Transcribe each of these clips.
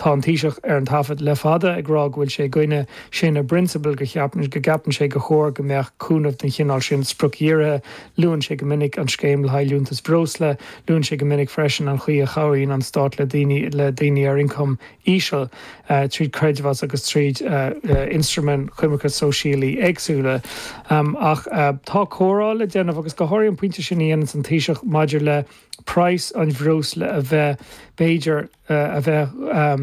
Tá an Taoiseach ar an taifead le fada ag rá go bhfuil sé i gcoinne sin i bprionsabal, go gceapann sé gur chóir go mbeadh cúnamh den chineál sin spriocdhírithe. Luann sé go minic an scéim le haghaidh liúntas bhreosla. Luann sé go minic freisin an chaoi a chabhraíonn an Stát le daoine le daoine ar ioncam íseal tríd creidmheas agus tríd ionstraimí coimirce sóisialaí éagsúla. Ach tá comhrá le déanamh agus go háirithe an pointe sin a dhéananns an Taoiseach maidir le praghas an bhreosla a bheith, b'fhéidir, a bheith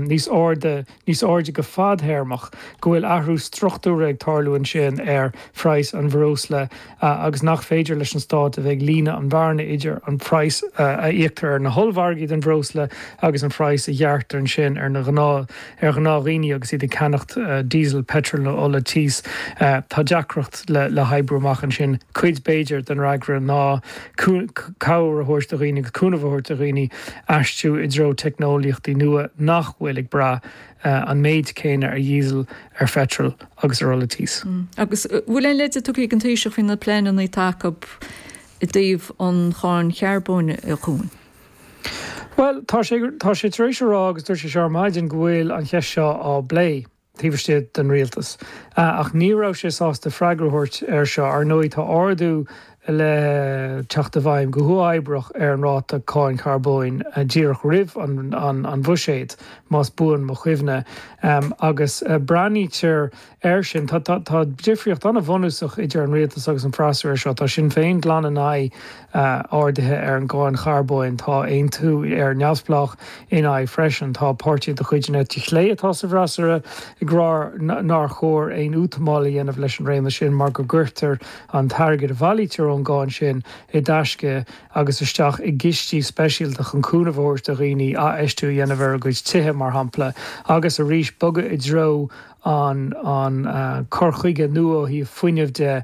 níos airde, níos airde go fadthéarmach, go bhfuil athrú struchtúrtha ag tarlú ansin ar phraghas an bhreosla agus nach féidir leis an Stát a bheith ag líonadh an bhearna idir an praghas a íoctar ar na hollmhargaí don bhreosla agus an phraghas a ghearrtar ansin ar ghnáthdhaoine agus iad ag ceannacht Diesel, Petrol nó ola tís. Tá deacracht le hoibriú amach ansin. Cuid, b'fhéidir, den fhreagra ná. cabhair a thabhairt do dhaoine agus cúnamh a thabhairt do dhaoine aistriú i dtreo teicneolaíochtaí nua nach bhfuil ag brath an méid céanna ar dhíosal, ar pheitreal agus ar ola tís. Agus an bhfuil aon leide tugtha ag an Taoiseach faoi na pleaineanna atá acu i dtaobh an cháin charbóin a Chuain? Bhuel, tá sé, tá sé tar éis a rá, agus dúirt sé seo ar maidin, go bhfuil an cheist seo á bplé. taobh istigh den rialtas. Ach ní raibh sé sásta freagra a thabhairt air seo. Ar ndóigh, tá ardú le teacht i bhfeidhm go huathoibreach ar an ráta cáin charbóin díreach roimh an bhuiséad, más buan mo chuimhne, agus breathnaítear air sin. Tá difríocht an-bhunúsach idir an rialtas agus an freasúra air seo. Tá Sinn Féin glan in aghaidh ardaithe ar an gcáin charbóin. Tá Aontú, Éire Neamhspleách ina aghaidh freisin. Tá páirtithe de chuid na heite clé atá sa bhfreasúra ag rá nár chóir aon útamáil a dhéanamh leis an réim sin mar go gcuirtear an t-airgead a bhailítear ón gcáin sin i dtaisce agus isteach i gcistí speisialta chun cúnamh a thabhairt do dhaoine athfheistiú a dhéanamh ar a gcuid tithe, mar shampla, agus arís bogadh i dtreo an cur chuige nua ó thaobh fuinnimh de.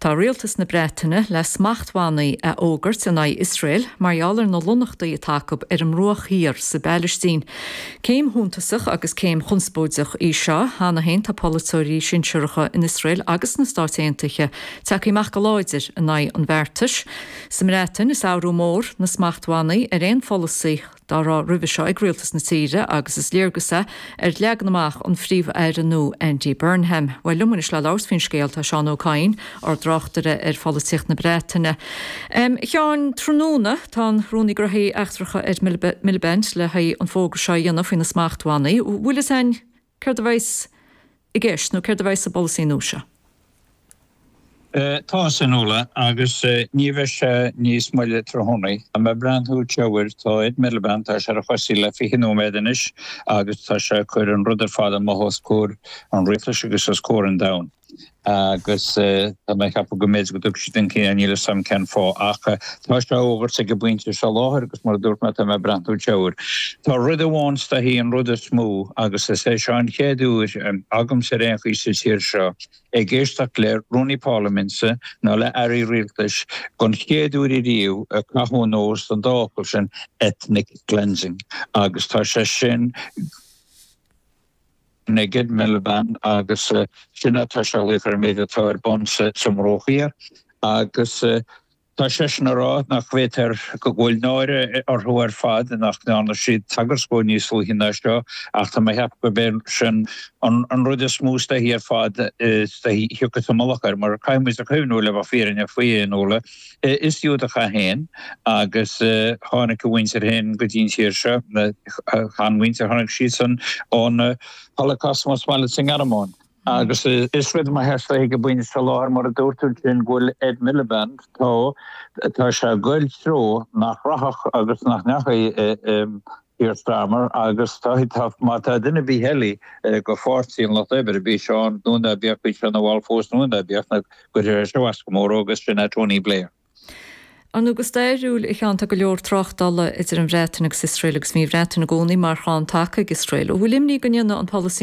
Tá rialtas na Breataine le smachtbhannaí a fhógairt in aghaidh Iosrael mar gheall ar na lonnachtaí atá acu ar an mBruach Thiar sa bPailistín. Céim shuntasach agus céim chonspóideach í seo. Cheana féin tá polaiteoirí sinsearacha in Iosrael agus sna Stáit Aontaithe tagtha amach go láidir in aghaidh an bheartais. Sa mBreatain is athrú mór na smachtbhannaí ar aon pholasaí. dá raibh roimhe seo ag rialtas na tíre agus is léargas é ar leagan amach an Phríomh-Aire nua, Andy Burnham. Bhuel, liom anois le labhairt faoin scéal tá Seán Ó Cadhain, ár dtráchtaire ar pholaitíocht na Breataine. Em, Sheáin, tráthnóna tá an Rúnaí Gnothaí Eachtracha Ed Miliband le haghaidh an fógra seo a dhéanamh faoi na smachtbhannaí. Bhfuil fhios a'inn Céard a bheas i gceist nó céard a bheidh sa bpolasaí nua seo? Tá a fhios, a Fhionnuala, agus ní bheidh sé níos moille tráthnóna. Tá mé ag breathnú isteach air, tá Ed Miliband, tá sé ar a chosa le fiche nóiméad anois agus tá sé ag cur an rud ar fad amach os comhair an rialtais agus os comhair an domhain. agus tá mé ag ceapadh go mb'fhéidir go dtug siad chun cinn é, níl 'fhios a'm cén fáth ach tá sé á fhógairt ag an bpointe seo láthair agus mar a dúirt mé tá mé ag breathnú isteach air. Tá rud amháin is dóichí an rud is mó agus is é seo an chéad uair agamsa ar aon chaoi sa tír seo ag éisteacht le Rúnaí Párlaiminte nó le Airí Rialtais don chéad uair ariamh ag caitheamh anuas den dá fhocal sin 'ethnic cleansing' agus tá sé sin ag Ed Miliband, agus sin atá sé a ghlaoch ar an méid atá ar bun sa mBruach Thiar. Agus tá seisean a rá nach bhféadtar, go bhfuil náire orthu ar fad nach ndearna siad tagairt dhó níos luaithe ná seo, ach tá mé a cheapadh gurb é sin an rud is mó is dóichí ar fad is dóichí a thiocfadh sa mullach air, mar caithfidh muid cuimhniú, le bheith fírinneach faoi, a Fhionnuala, Is Giúdach é féin agus tháinig a mhuintir féin go dtí an tír seo, a sheanmhuintir, tháinig siadsan ón Holocaust más maith leat sa nGearmáin. Agus is rud maith é seo ag an bpointe seo láthair mar a dúirt tú ansin go bhfuil Ed Miliband, tá sé ag goil treo nach rachadh agus nach ndeachaigh, Keir Starmer, agus tá, má tá duine ar bith eile de Pháirtí an Lucht Oibre, bíodh sé ann nó ná bíodh, bíodh sé ina bhall fós nó ná bíodh, a gcuirfidh sé seo as go mór dhó, agus sin é Tony Blair. Ar ndóigh, go stairiúil, a Sheáin, tá go leor tráchtála idir an Bhreatain agus Iosrael agus bhí an Bhreatain i gcónaí mar chrann taca ag Iosrael. An bhfuil imní go ndéanfadh an polasaí